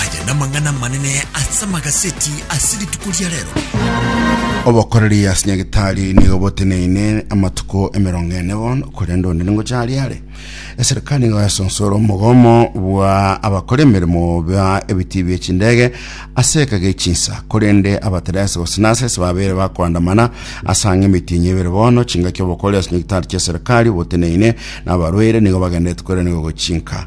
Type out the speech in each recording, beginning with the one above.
Aya namang'ana amanene ase amagaseti ase rituko ria rero. Obokoreri ase Nyagetari nigo boteneine amatuko emerongo ene bono, korende onde ningocha are are. Eserikali nigo yasonsora omogomo bwa abakora emeremo ba ebitii bie chindege ase eka gie chinsa, korende abateresi gose nasesi babeire bakoandamana ase ang'e emitinyi ebere bono. Chingaki obokoreri ase Nyagetari chia eserikali boteneine na abarwaire nigo bagenderete koiraneria gochinka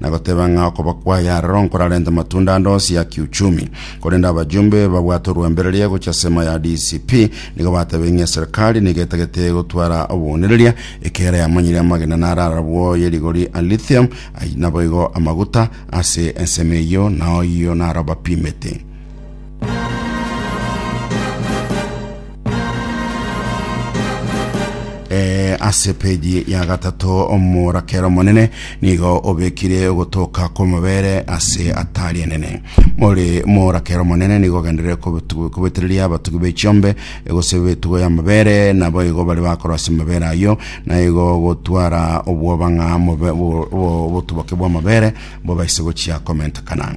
na goteba ng'a okoba kwaye aroro nkorarente matunda ande onsi ya kiuchumi. Korende abajumbe babwate orwembereria gochia asemo ya DCP nigo batebire ng'a eserikali nigo etagete gotwara obounereria ekiagera yamanyire amagena naro arabwo ye rigori a lithium ai- naboigo amaguta ase ensemo eyio nao oyio naro bapimete. Eh, ase peji ya gatato omorakera omonene nigo obekire ogotoka kw'amabere ase atari enene more morakera omonene nigo ogenderere kobetu- kobetereria abatugi b'echiombe egose betugo y'amabere nabo igo bare bakora ase amabere ayio na igo gotwara obwoba ng'a mobe- bo- bo- obotuboke bw'amabere bobaise gochia komentekana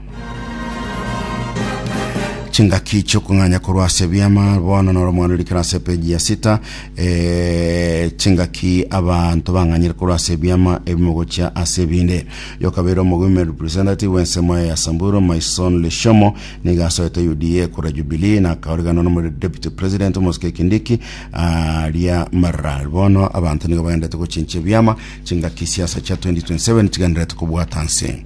chingaki chiokong'anya korwa ase ebiama bono noro mwana orikana ase epeji ya sita eh, chingaki abanto bang'anyire korwa ase ebiama ebimo gochia ase ebinde yokabeire omogwime representative w'ensemo ya samburu maison lishomo niga asoete uda kora jubilee na akaorigana nomori deputy president omosike kindiki aria marara bono abanto nigo baendete gochinchia ebiama chingaki siasa chia 2027 chigenderete kobwata nse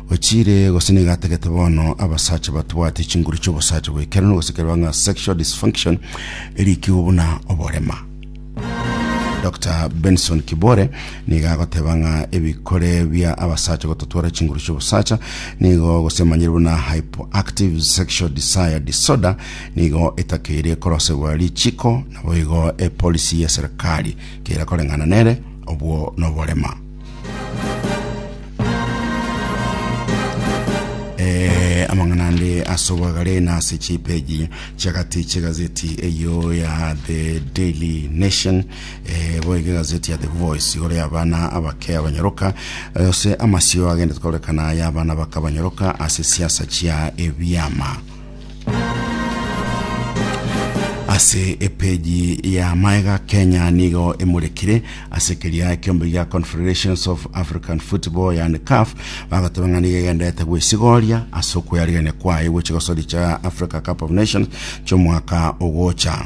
Ochiire gose nigo atagete bono abasacha batwate chinguru chi'obosacha bw'ekerano gose kereba ng'a sexual dysfunction erikigwe buna oborema. Dr. Benson Kibore nigo agoteba ng'a ebikore bia abasacha gototwara chinguru chi'obosacha nigo gosemanyire buna hypoactive sexual desire disorder nigo etakeire korosegwa richiko naboigo epolisi y'eserikari keira koreng'ana nere obwo noborema. Eh, amang'ana ande ase obwagare na ase chipeji chiagati chiegazeti eyo ya the daily nation eh, boiga egazeti ya the voice igoro y'abana abake abanyaroka eh, ase amasio agende korekana y'abana baka abanyaroka ase siasa chia ebiama ase epeji ya maega kenya nigo emurekire ase keria ekiombe gia confederations of african football yani caf bagoteba ng'a nigo egenderete gwesigoria ase okweyarigerania kwaye gwe chigosori cha africa cup of nations chomwaka ogocha